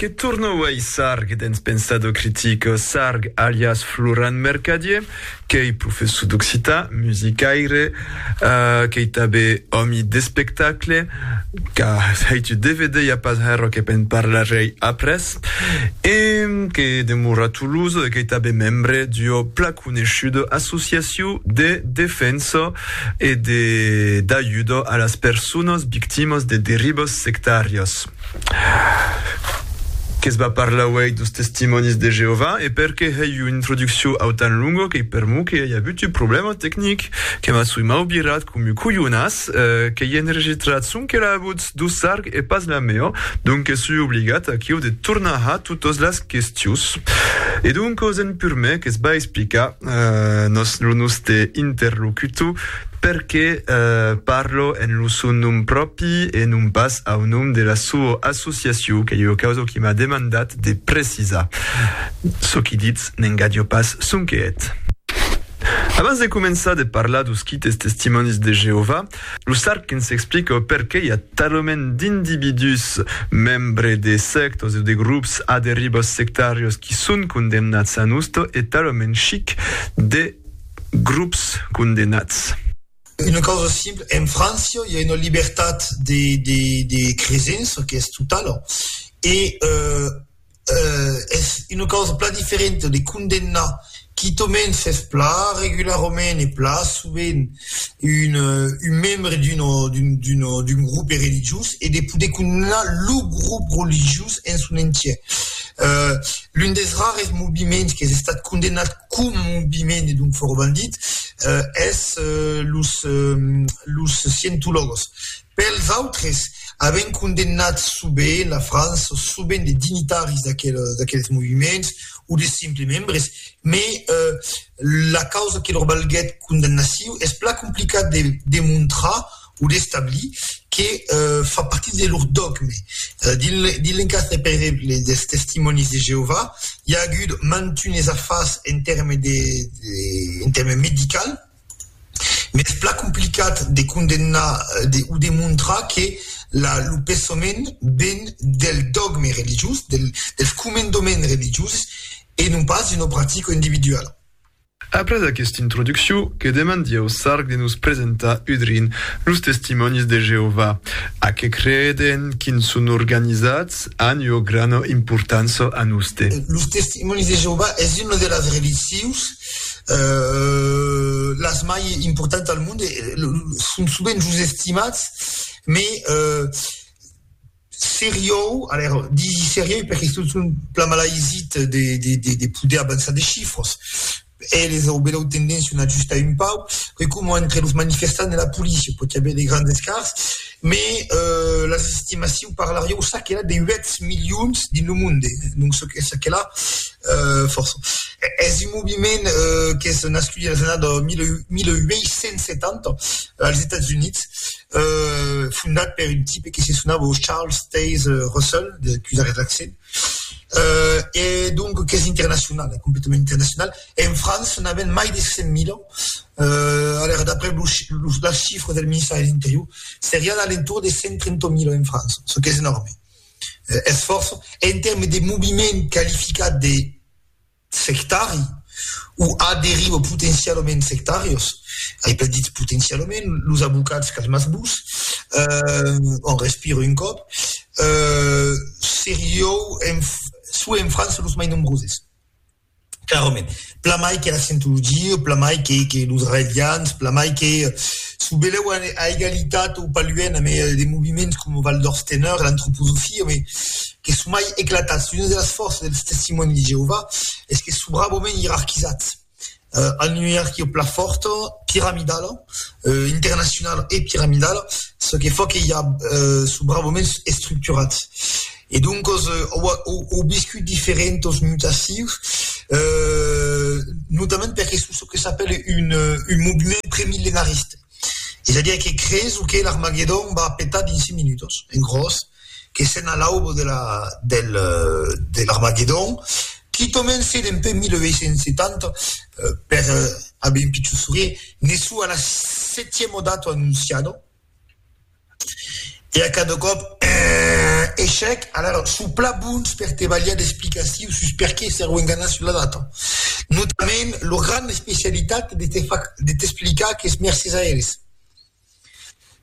Que torna uèi Sarg dens Pensado Critico. Sarg, alias Florent Mercadier, qu'ei professor d'occitan, musicaire, qu'ei tanben òmi d'espectacle, qu'a hèit un dvd ja pas hèr o que be'n parlarèi après, e que demora a Toulouse e qu'ei tanben membre d'ua plan coneishuda associacion de defensa e de d'ajuda a las personas victimas de derivas sectàrias. Que's va parlar uèi dos Testimònis de Jeovà e perqué hèi una introduccion autan longa qu'ei per mo que ei avut un problèma tecnic que m'a soi m'au virat com un colhonas qu'ei enregistrat sonque l'avut. D'o sarg e pas la mèo, donques su obligat aquiu de tornar ha totos las questius. E donques en pur mè que's ba explicar nos lo noste interlocutor perqué parlo en lo son nom pròpi e non pas au nom de la soa associaciu qu'ei ua causa qui m'a demandat de precisar. Çò qui ditz n'engadio pas sonque eth. Abans de començar de parlar d'os quites Testimònis de Jeovà, Lo Sarkin s'explica perqué i a talament d'individús, membres de sèctas o de grops a derivas sectàrias qui son condemnats a nosta e talament chic de grops condemnats. Una causa simpla, en França i a una libertat de cresença qu'es totala e Es una causa plan diferenta de condemnar quitament s'es plan regularament e plan sovent un un membre d'una d'una d'un grope religiós e de poder condemnar lo grope religiós en son entièr. L'un des rares moviments qu'es estat condemnat coma moviment e donc forbandit es los los scientologos. Pels autres, avèm condemnat sovent la França, sovent de dignitaris d'aqueles moviments o de simples membres, me la causa que lor balguèt condemnaciu es plan complicat de demontrar o d'establir que fa partit de lor dogme. Dins l'encàs per exemple dels Testimònis de Jeovà, i a agut mantunes afars en tèrmes medicals, M'es plan complicat de condemnar o de montrar que lo pensament ven del dògme religiós, dels comendaments religioses e non pas d'una practica individuala. Après aquesta introduccion, que demandi au Sarg de nos presentar udrin los Testimònis de Jeovà, a qué creden, quins son organizats, an ua grana importància a noste. Los Testimònis de Jeovà es una de las religions las mai importants al monde son sovent los estimats me seriou disi serieu perque se son plan malaisit de poder avançar de chifras eles au belèu tendencion a ajustar un pauc que coma entre los manifestants e la policia pòti aver de grands escarts Me las estimaciu parlar ieu ça que la de 8 milions dins lo monde donc ce que ça que la força es un moviment qu'es nascut dins les années 1870 als Estats Units fondat per un type que se sonava Charles Taze Russell, de cusar es l'accent. E donc qu'es internacional, es completament internacional. En França n'avèm mai de 100.000, aler d'après las chifras del ministèri de l'Interior, serián a l'entorn de 130.000 en França, çò qu'es enòrme, es fòrça. En tèrmes de moviment qualificat de... sectari o a deriva potencialament sectàrios, ai pas dit potencialament, los abocats qu'as mas vos, on respira un còp, seriou en soi en França los mai nombroses, clarament, plamai que la scientologia, plamai que que los raelians, plamai que çò belèu a egalitat o paluèn amé de moviments coma Val d'Ors Teneur, l'antroposofia, Que son mai eclatats, una de las fòrças dels Testimònis de Jeovà es que son brabament ierarquizats. An una ierarquia plan fòrta, piramidala, internacionala e piramidala, çò que fa que i a, son brabament estructurats. E doncas au viscut diferentas mutacions, notament perque son çò que s'apèle un movement pré-millenariste. Es a dire que creson que l'Armagedon va petar dins cinc minutas, en gròs. Que sèn a l'aube de la del de l'Armagedon, qui comencé dempuèi 1870 per aver un pichon sourire, ne sou a la setiemo dato annunciado, e a cada còp eehh echec, alara sou plan bons per te balhar d'explicacius sus perqué s'èro enganat sus la data. Notament lor grana especialitat de te far de t'explicar qu'es mercés a eles.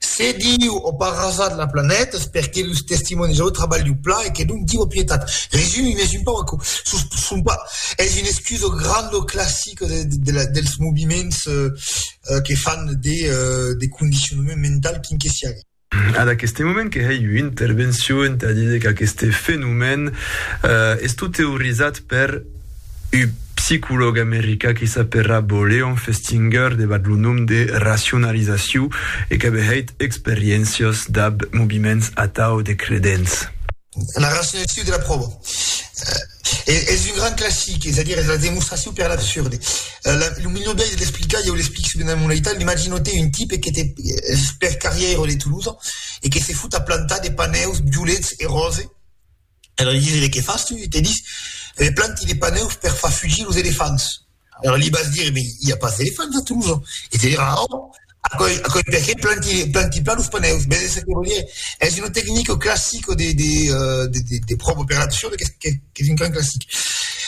Se Diu o pas rasat la planeta es perque los Testimòni de Jehova trabalhu plan e que donc Diu o pietat. Resumim, es un pauc aquò. Sos, son pas, es un escudo grandoclassic de, de, de la, dels moviments que fan de, de condicionament mental quin que siague. Ad aqueste moment que hèi ua intervencion entà díder qu'aqueste fenomèn es tot teorizat per Un psicològ americà que s'apèrra Bo Leon Festinger debat lo nom de racionalizaciu e qu'avè hèit experiéncias dab moviments atau de credents. La racionalizaciu de la pròva es un grand classic, es a dire es la demostraciu per l'absurde. Lo milhor biais de l'explicar, ieu l'explic subent damb una aital, imagino-te un tipe que te pèr carrièr de Toulouse e que se fot a plantar de panèus violets e ròses, Era li didie, Que fas tu? Te dis, me planti de paneus per far fugir los elefants. Era li vas dire, Me i a pas d'elefants a Toulouse. E te dirà, Oh, aquoi, aquoi perqué planti, planti pas los paneus? Vese ce que vò dire? Es una tecnica classica de, de, de, de, de pròva per l'adopcion qu'es, qu'es, qu'es un grand classic.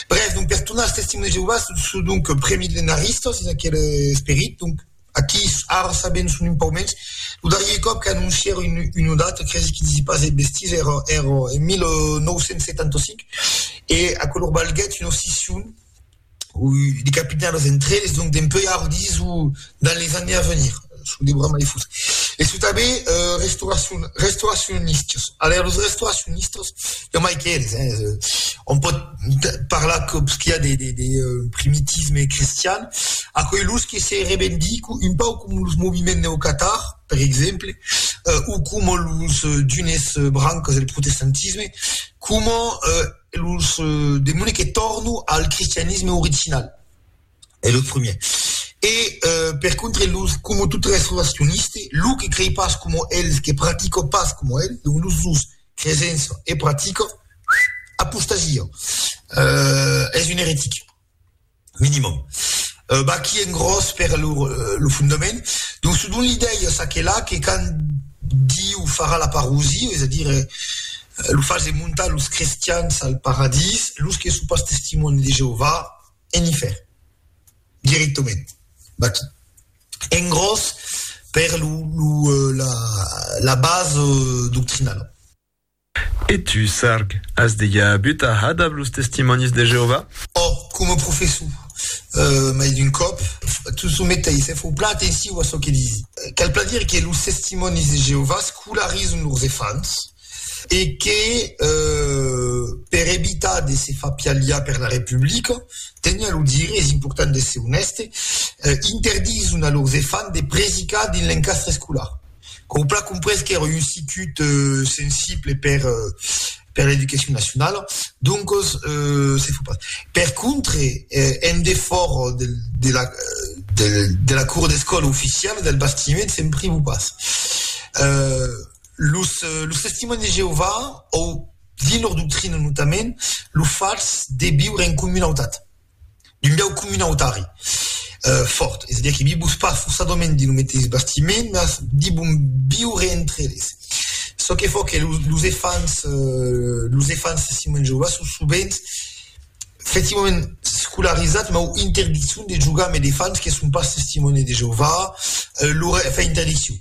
Brèf, donc, per tornar als Testimonts de Jeovà, son donc premillenaristas dins aquel esperit, donc, Aquís ara sabèm son un pauc mens. Lo darrier còp qu'anoncièron una data cresi que disi pas de bestises èra en 1975 e aquò lor balhèt una scission de capitans entre eles, donc dempuèi ara disi s'o dins les années a venir s'o deurà mai fus. E se tanben restauracion restauracionistas. Aler los restauracionistas i a mai qu'eles, eh, on pòt parlar còps qu'i a de primitisme cristian, aquelos que se revendican un pauc com los moviments neocatar, per exemple, o coma los d'unes brancas del protestantisme, coma los demuni que tornan al cristianisme original. E lo primièr. E per contre los como tot res relacioniste, lo que crei pas como el, que pratico pas como el, donc los dos, cresença e pratico, apostasia, es un eretic, minimum. Vaqui en gròs per lo lo fondament. Donc se don l'idèia ça que là que quand Diu farà la parosia, es a dire lo fase montar los crestians al paradís, los que son pas testimòni de Jeová en ifèrn, directament, vaquí. En gròs, per lo, lo, la, la base doctrinala. E tu, Sarg, as dejà avut a hada ab los Testimònis de Jeovà? Ò, coma professor, mai d'un còp. Tu someteis, e fau plan atensiu a çò que disi. Cal plan dire que los Testimònis de Jeovà scolarizan lors efants. e que per evitar de se far pialhar per la Republica, teniá lo dire, es important d'èsser onèste, interdison a lors efants de predicar dins l'encastre escolar. Qu'au pla comprés qu'èra un sicut sensible per per l'educacion nacionala, doncos se fa pas. Per contre, en defòra de de la de la cour d'escòla oficiala del bastiment se'n privo pas. Los Testimònis de Jeovà, o dins lor doctrina notament, lo fach de viure en comunautat, d'un biais comunautari fòrt, es a dire que vivos pas fossadament dins lo meteis bastiment, mas divon viure entre eles. Çò que fa que los elefants, los elefants Testimònis de Jeovà son sovent efectivament scolarizats, mas interdiccion de jogar amb elefants que son pas Testimònis de Jeovà, lor, enfin interdiccion.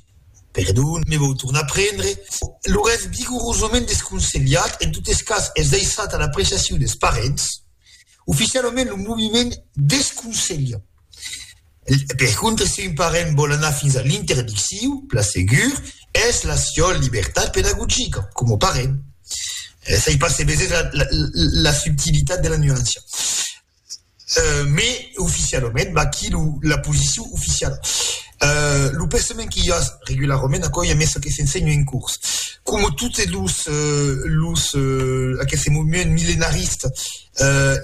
Perdon, me vau tornar prendre. Lo res vigorosament desconselhat, en totes cas es daissat a l'apreciacion des parents. Oficialament lo moviment desconselha. Per contra, si un parent vòl anar fins a l'interdicciu, plan segur, es la siol libertat pedagogica, coma parent. Sai pas se vesètz la subtilitat de la nuancia. Mais oficialament, vaquí lo, la posicion oficiala. Lo pensament que i a regularament, aquò i a mès que s'ensenha en curs, coma totes los, los, aqueste movement millenarista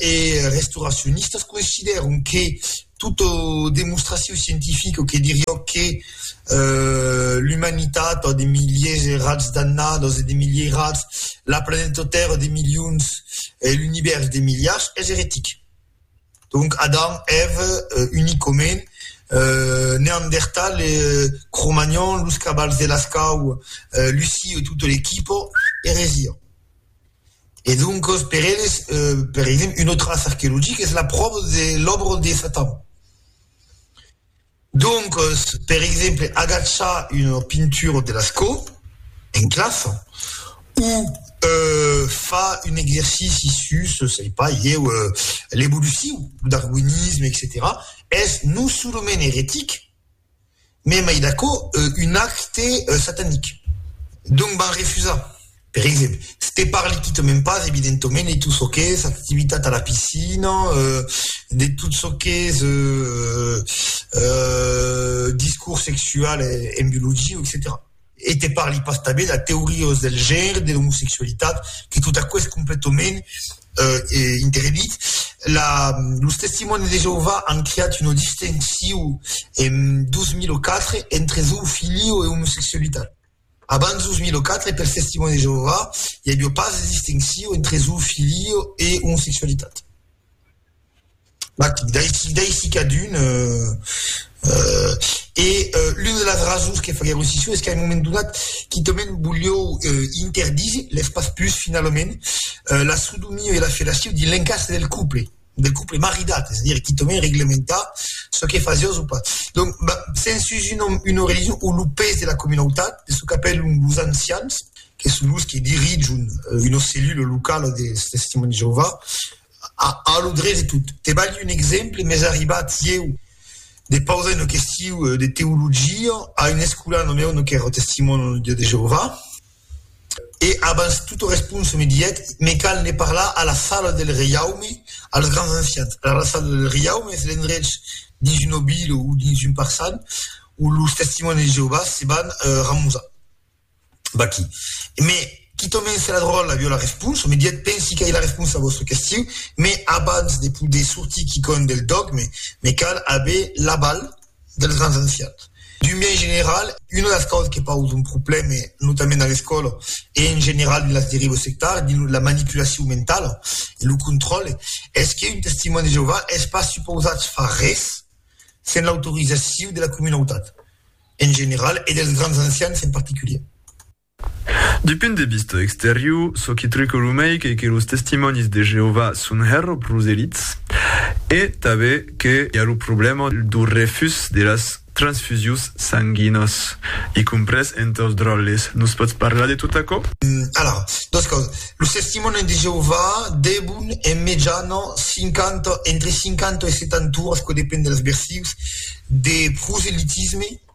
e restauracionista, consideram que tota demonstracion scientifica que diriá que l'umanitat a de miliers e rats d'annadas e de milierats, la planeta Tèrra de milions e l'univèrs de miliards, es eretic. Donc Adam, Ève, unic òme, Neandertal, Cro-Magnon, los cabals de Lascau, Luci e tota l'equipa, eresia. E doncas per eles, per exemple, una traça arqueologica es la pròva de l'òbra de Satan. Doncos, per exemple, agachar una pintura de l'escò en classa o far un exercici sus, sei pas ieu, l'evoluciu, lo darwinisme, etcetèra, es non solament eretic, mès mai d'aquò, un acte satanic. Donc, van refusar. Per exemple, se te parli quitament pas, evidentoment, de tot çò qu'es activitat a la piscina, de tot çò qu'es discors sexual en biologia, etcetèra. E te parli pas tanben de teorias del genre, de l'omosexualitat, que tot aquò es completament interdit. La, los Testimònis de Jeovà an creat una distincion en 2004 entre zoofilio e omosexualitat. Abans 2004, pels Testimònis de Jeovà, i aviá pas de distinccion entre zo filio e omosexualitat. D'aisi cadun e l'una de las rasons que faguèron escission es qu'a un moment donat quitament voliáu interdire, lèspas pus finalament, la sodomia e la fellatio dins l'encastre del couple. del couple maridat, es a dire quitament reglementar çò que fasiá o çò pas. Donc, sens un nom, una religion o lo pes de la comunautat, de çò qu'apèlon los ancians, que son los que dirijon una cellula locala dels Testimònis de Jeovà, a lo drech de tot. Te balhi un exemple, m'es arribat ieu de pausar una question de teologia a un escolan, lo meu non qu'èra Testimòni de Jeovà, E abans tota responsa me didec, Me cal ne parlar a la Sala del Reiaume, als grands ancians. Alara, la Sala del Reiaume es l'endrech dins una vila o dins un parçan ont los Testimònis de Jeovà se van ramusar. Vaquí. Me quitò mens se la dròlla viò la responsa, me didec, Pensi qu'ai la responsa a vòstra question, mes abans de poder sortir quicòm del dògme, me cal aver l'aval. dels grans ancians. D'un biais general, una de las causas que pausa un problème, notament a l'escòla e en general dins las derivas sectàrias, dins la manipulacion mentala e lo contròle, es que un Testimòni de Jeovà es pas supausat far res sens l'autorizacion de la comunautat en general e dels grans ancians en particulièr. D'un punt de vista exterior, çò que truca lo mei qu'ei que los Testimònis de Jeovà son hèr proselits e tanben que i a lo problèma dau refús de las transfusions sanguinas, i comprés entre los dròlles. Nos pòts parlar de tot aquò? Alara, dos causas. Los Testimònis de Jeovà devon, en mejana, cinquanta, entre cinquanta e setanturas, çò depend dels versius, de proselitisme.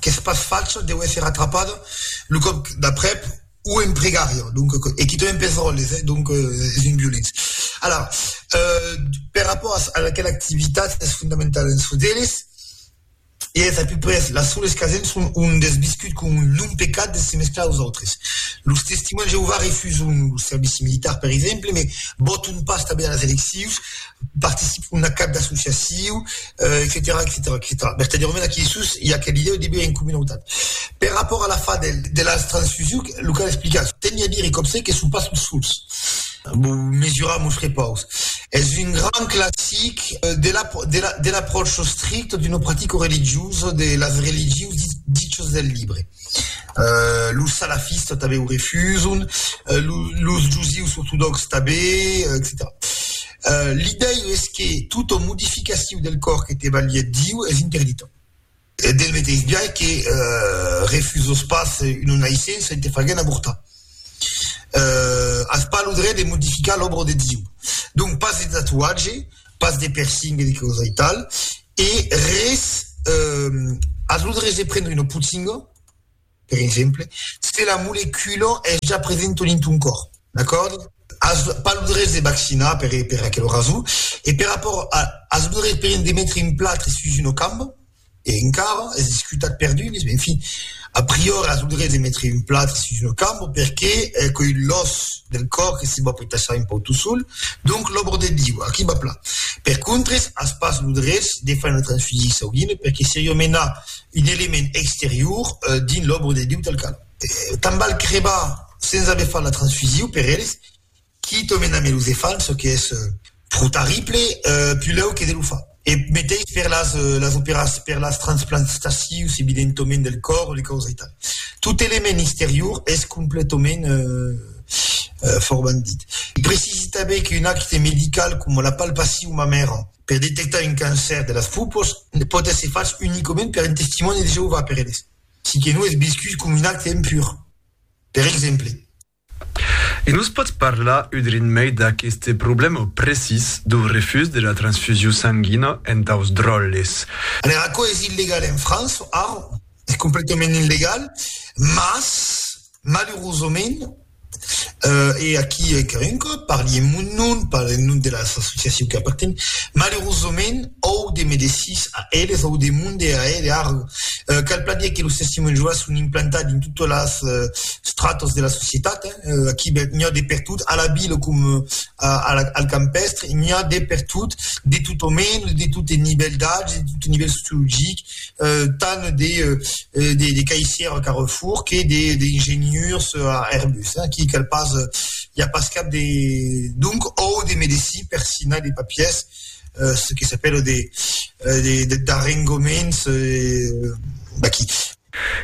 qu'es pas fach deu èsser atrapat lo còp d'aprèp o en pregària, donc e quitament pes ròtles, eh, donc es un violent. Alara, per rapòrt as a aquela activitat es fondamental en çò d'eles, e es a peu près las soles qu'asen son un des viscut com un non-pecat de se mesclar aus autres. Los Testimòns de Jeovà refuson lo servici militar, per exemple, me vòton pas tanben a las eleccions. participe a una cap d'associaciu, etcetèra, etcetèra, etcetèra. Vertadièrament, aquí dessús i a aquela idèu de viure en comunautat. Per rapòrt a la fa del, de las transfusiu, lo cal explicar. Teni a dire còp se que son pas los sols. Vos mesurar mos repaus. Es un grand classic de la, de la, de l'apròcho stricto d'una practica religiosa de las religius dichas del libre. Los salafistas tanben o refuson, los josius ortodòxs tanben, etcetèra L'idei es que tota modificacion del còr que te balhe Diu es interdita, del meteis biais que refusas pas una naissença e te faguèn avortar, as pas lo dret de modificar l'òbra de Diu. Donc pas de tatuatge. pas de persingue de causa e tal, e res, ath lor res de prendre una potinga, per exemple, se la molecula es ja presenta dins ton còr, d'acòrdi? As pas lo drech de vaccinar per aquela rason, e per rapòrt as lo drech de metre un platre sus una camba, E encara es discutat perdudes, en fin, a priori as lo dret de metre un plat sus lo camp perque qu'ei l'òs del còr que se va petassar un pauc tot sol, donc l'òbra de Diu, aquí va plan. Per contres as pas lo dret de far una transfusie sanguina perque seriá menar un element exterior dins l'òbra de Diu tal qual. Tant val crebar sens aver fach la transfusiu per eles. Qui to mena me lo ze fal, çò que es pro tarrible, pulèu que ze lo fa. E meteis per las las operas per las transplanstacius evidentoment del còr, li causa aital. Tot element exterior es completoment forbandit. Precisi tanben qu'un acte medical coma la palpacion mamèra per detectar un cancèr de las pupos pòt èsser fach unicoment per un Testimòni de Jeová, per eles, si que non es viscut coma un acte impur, per exemple. E nos pòts parlar udrin mei d'aqueste problèma precís dau refús de la transfusiu sanguina entaus dròlles? Aler, aquò es illegal en França, ara, es completament illegal, mas, malurosament, e aquí encara un còp parli en mon nom, pas en nom de las associaciu que apartenc, malurosament òu de medecins a eles, òu de monde a eles, ara, cal pas dire que los testimònis de Jeovà son implantats dins totas las stratos de la societat, eh, aquí n'hi a de per tot, a la vila com a, a la, al campestre, n'hi a de per tot, de tot o menys, de tot el nivèl d'âge, de tot el nivèl sociologic, eh, tant de, eh, de, de caissière a Carrefour que de, de ingenieurs a Airbus, eh, qui cal pas, hi a pas cap de, donc, o de medecin per signar de papiers, eh, ce que s'appelle de, eh, de, de, d'arrengoments, eh, d'aquí.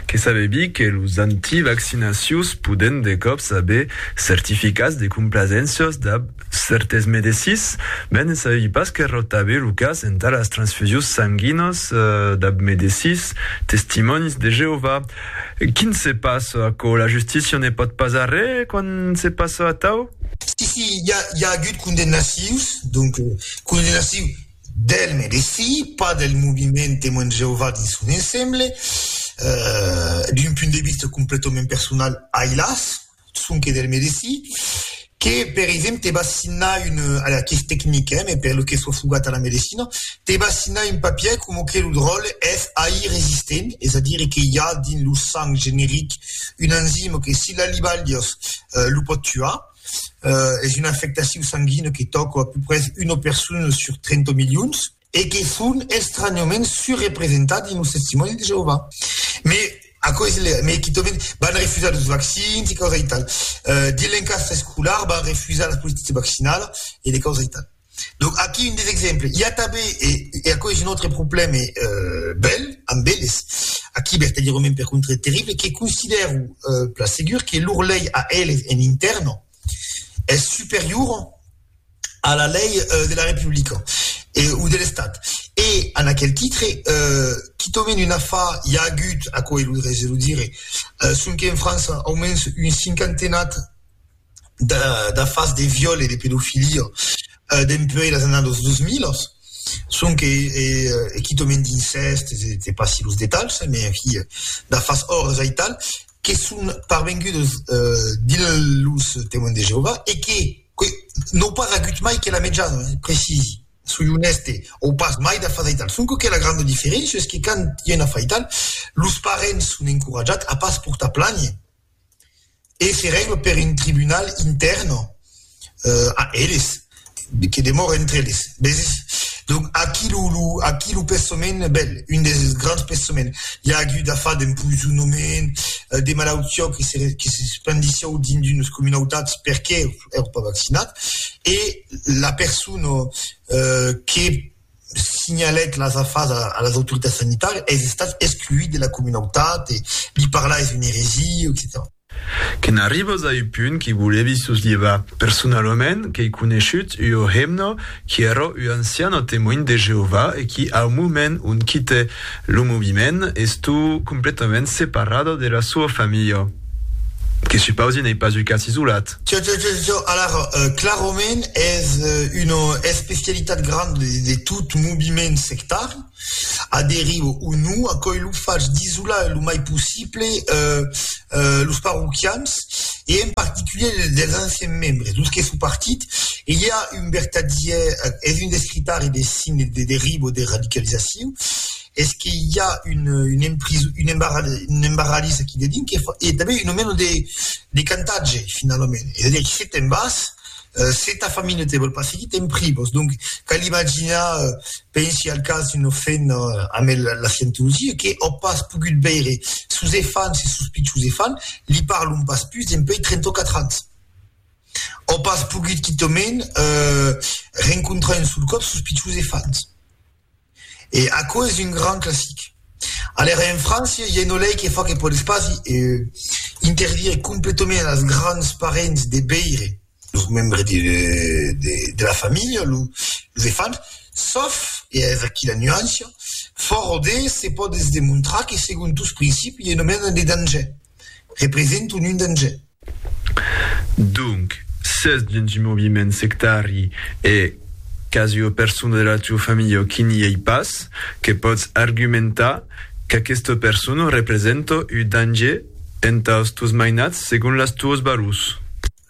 Que sabebi que los anti-vaccinacius poden de còps aver certificats de complazéncias dab cèrtes medecins, mès ne sabebi pas qu'errò tabe lo cas entà las transfusius sanguinas dab medecins Testimònis de Jeovà. Quin se passa aquò? La justícia ne pòt pas arré quand se passa atau? Si, si, i a agut condemnacius, donc condemnaciu. D'Elm e de si, pas del moviment Temoins de Jeová dins son ensemble. D'un punt de vista completament personal, ai las, sonque d'Elm e de si, que, per exemple, va signar un, alia, qu'es tecnic, eh, mès per lo que soi fogat a la medecina, te va signar un papièr coma que lo dròlle es AI resistent, es a dire que i a dins lo sang generic un enzima que si l'alibalhas lo pòt tuar. es una afectacion sanguina que tòca a peu pres una persona sur 30 milions, e que son estranhament surrepresentats dins los Testimònis de Jeovà. Me aquò es lèu, me quitament van refusar los vaccins e causa e tal. Dins l'encasta escolar van refusar la política vaccinala e de causa e tal. Donc aquí un des exemples. I a tanben, e e aquò es un autre problème bèl, amb eles, aquí vertadièrament per contra terrible, que considèro plan segur que lor lei a eles en intèrna es superiora a la lei de la Republica e o de l'Estat. E en aquel titre, quitament un afar, i a agut, aquò es lo drech de lo dire, sonque en França aumens un cinquantenat, d'afars de viòl e de pedofilia dempuèi las annadas dos milas, sonque e quitament d'incèst, se passi los detalhs, me ahi d'afars òrres aital, que son parvengudes dins los Temoins de Jeovà e que n'au pas agut mai que la mejana, precisi, soi onèste, au pas mai d'afars aital, sonque que la granda diferéncia es que quand i a un afar aital, los parents son encoratjats a pas portar plànher. e ferèm per un tribunal intèrn a eles, que demòre entre eles, veses? Donc, aquí lo, lo, aquí lo pensament, ben, un des grands pensament, i a agut a far d'empoisonament, de malautiá que se, que se spandissiá dins d'unes comunautats perqué èra pas vaccinat, e la persona que, signalèc las afas a las autoritats sanitàrias, es estat excluit de la comunautat e li parlar es una eresia, etcetèra. Que n'arribas a un punt qui volèvi soslhevar personalament qu'ei coneishut ua hemna qui èra ua anciana Temoin de Jeová e qui, au moment ont quitè lo moviment, estó completament separada de la soa familha, que supausi n'ei pas un cas isolat. Tjo, tjo, tjo, tjo, alara, clarament es una especialitat granda de, de tot moviment sectari, aderir o non, aquò lo fach d'isolar lo mai possible los parroquians e en particulier dels anciens membres, los que son partit, e i a un vertadièr, es un descritari de signes de deriva o de radicalizacion, es que i a un un empris un embarra un embarralís aquí dedín que fa e tanben un moment de de cantatge finalament es a dire que se te'n vas se ta familha te vòl pas seguir te'n privas donc cal imaginar pensi al cas d'una femna amb el la scientologia que ò pas pogut veire sos efants e sos pichons efants li parlon pas pus dempèi 34 ans ò pas pogut quitament rencontrar un sol còp sos pichons efants. E aquò es un gran classic. Alèra en França i a una lei que fa que podes pas interdire completament als grands parents de beire los membres de la familha, los enfants, sauf, e es aquí la nuància, fòra de se pòdes demontrar que segon tos principis i a nomena de danger. represent un un danger. Donc, s'es dins un moviment sectari e qu'as ua persona de la tua familha qui n'i ei pas, que pòts argumentar qu'aquesta persona representa un danger entà es tos mainats segon les tuas valors.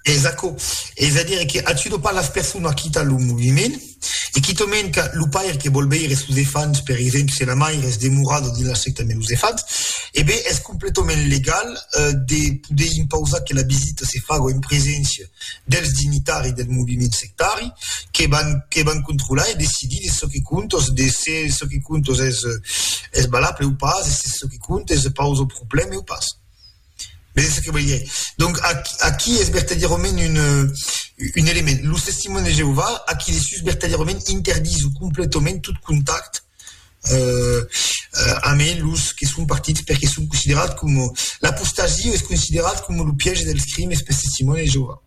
Es aquò, es a dire que a tudo pas las personas quita lo moviment, e quito mens qu'a lo paire que vòl veire sos efants, per exemple se la maire es demorada dins la secta meus efants, e ben es completament legal de poder impausar que la visita se faga en preséncia dels dignitaris del moviment sectari que van que van controlar e decidir de çò que compta, de se çò que compta es valable o pas, e se çò que compta es pausa problème o pas. Mès es ça que voliá. Donc, aqu aquí es vertadièrament un un element. Los Testimonts de Jeovà, aqui dessús, vertadièrament interdisó completament tot contact euh amé los que son partits perque son considerats coma, l'apostasia es considerat coma lo piège dels crimes pels Testimonts de Jeovà.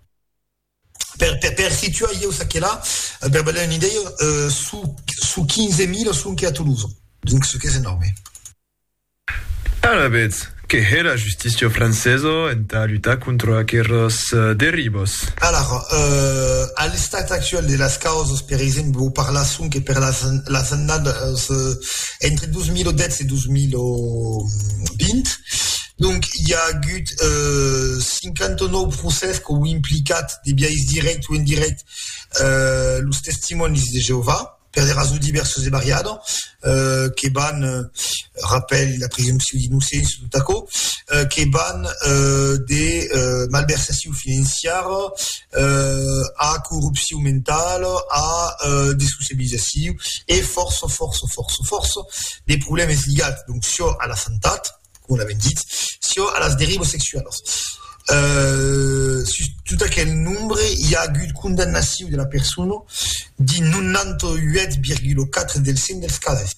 Per per per situar ieu ça que la, per ba dar una idèia, euh son son 15.000 son que a Tolosa. Donc, çò qu'es enòrme. Alavetz, que hè la justícia francesa entà lutar contra aqueras derivas? Alara, a l'estat actuel de las causas, per exemple, vos parlar sonque per las annadas entre 2010 e 2020, donc i a agut 59 procès qu'au implicat de biais dirèct o indirèct los Testimònis de Jeovà. per de rasons divèrsos e variadas, que van, rapèl la presumpcion d'innocéncia e tot aquò, que van de malversacion financiara a corrupcion mentala a dessociabilizacion e fòrça, fòrça, fòrça, fòrça de problèmes ligats, donc, çò a la santat. coma l'avèm dit, çò a las derivas sexualas. Sus tot aquel nombre i a agut condamnacion de la persona dins 98,4 del cent dels cases.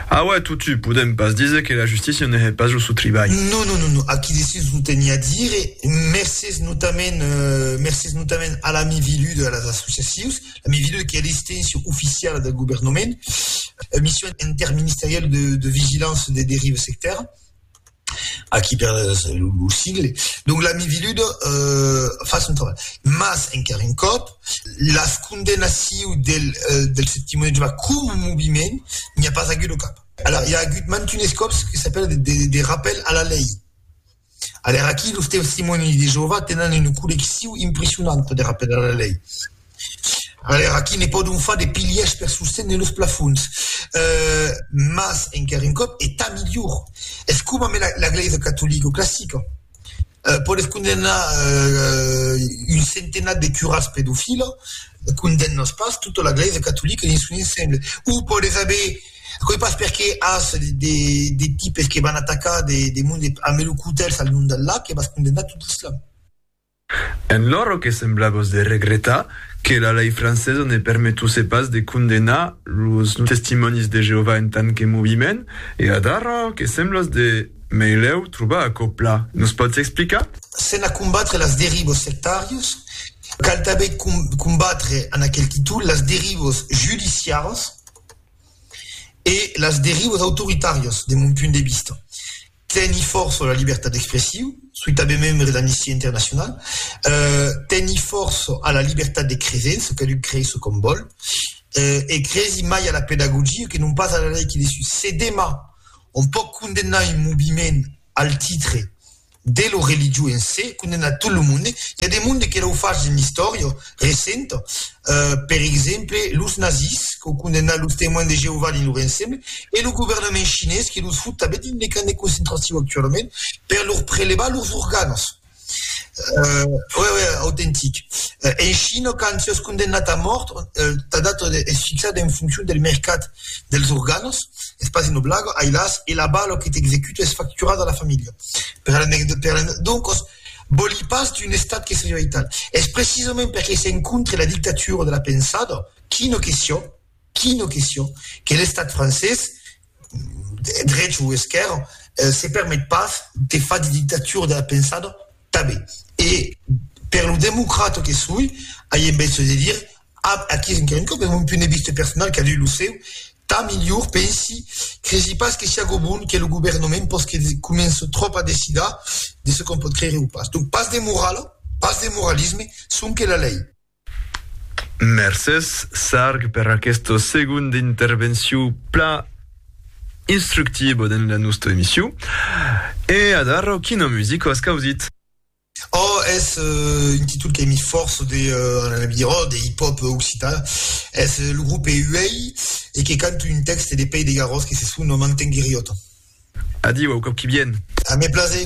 A uèi totjut podèm pas díser que la justícia ne hè pas lo sò tribalh. Non, non, non, non, aquí de sus lo teniá dire, mercés notament, mercés notament a l'ami Viludo e a las associacions, A mesura que la destinacion oficiala del governament, la Mission interministerielle de, de vigilance des dérives sectaires, aquí per lo sigle, donc la miviluda euh, fa son trabalh. Mas, encara un còp, las condemnaciu del, euh, del Septimoni de Jehovà com un moviment, n'i a pas agut au cap. Alors, i a agut mantunes còps que s'apèla de, de, de rappel a la lei, Aler aquí, los Testimonèis de Jeovà tenan una colleccion impressionanta de rapèls a la lei. Aler aquí, ne pòdon far de pilhèrs per sostene los plafons. Mas, encara un còp, e tant milhor, es coma me la Glèisa Catolica classica podèt condemnar un centenat de curats pedofila, condemnas pas tota la Glèisa Catolica dins son ensemble. O podètz aver Aquò es pas perqué as de de tipes que van atacar de de monde a melocotèls al long del lac e vas condemnar tot d'islam. En loro que sembla vos de regretar que la lei francesa ne permetuse pas de condemnar los Testimònis de Jeovà en tant que moviment e adarrò que semblas de meilèu trobar aquò pla, nos pòts explicar? Sena combatre las derivos sectàrios, cal tanben combatre, en aquel títol, las derivos judiciaras. e las derivas autoritàrias, de mon punt de vista, teni fòrça la libertat d'expressiu, soi tanben membre de l'Amnistia Internacional, teni fòrça a la libertat de creser, çò cadun crei çò qu'òm vòl, e cresi mai a la pedagogia que non pas a la lei que desús. Se demà òm pòt condemnar un moviment, Al titre de lo religion en se condemnar tot lo monde, i a de monde que l'au fach dins l'istòria recenta. Per exemple, los nazis qu'au condemnar los Temoins de Jeovà dins lor ensemble e lo governament chinés que los fut tanben dins le camp de concentracion actualament per lor prelevar lors organas. Ue, ue, autentic. En China, quand siás condemnat a mòrt, ta data es fixada en foncion del mercat dels organos, es pas una blaga, ai las, e la bala que t'executa es facturada a la familha. Per la neg, per la neg, doncas, vòli pas d'un estat que seriá aital. Es precisament perque s'encontre la dictatura de la pensada, quina que siá, Quina question que l'Estat francés, drech o esquèrra, se permet pas de far de dictatura de la pensada tanben. E per lo democrata que soi, ai en bèstre de dire, ab aquí encara un còp, es mon punt de vista personal, cadun lo seu, tà milhor, pensi, cresi pas que siágo bon que lo governament pòs que comença tròp a decidar de ce qu'on pòt creire o pas. Donc pas de morala, pas de moralisme, sonque la lei. Mercés, Sarg, per aquesta segonda intervencion pla instructiva dins la nosta emission. E adara, quina musica as causit? Oh, es un títol que mi fòrça de, anam dire, oh, de hip-hop occitan. Es lo grupe Huey e que canta un tèxte de Pèi de Garròs que se sona M'entengueriot. Adiu, au còp qui vien! A mes plaser!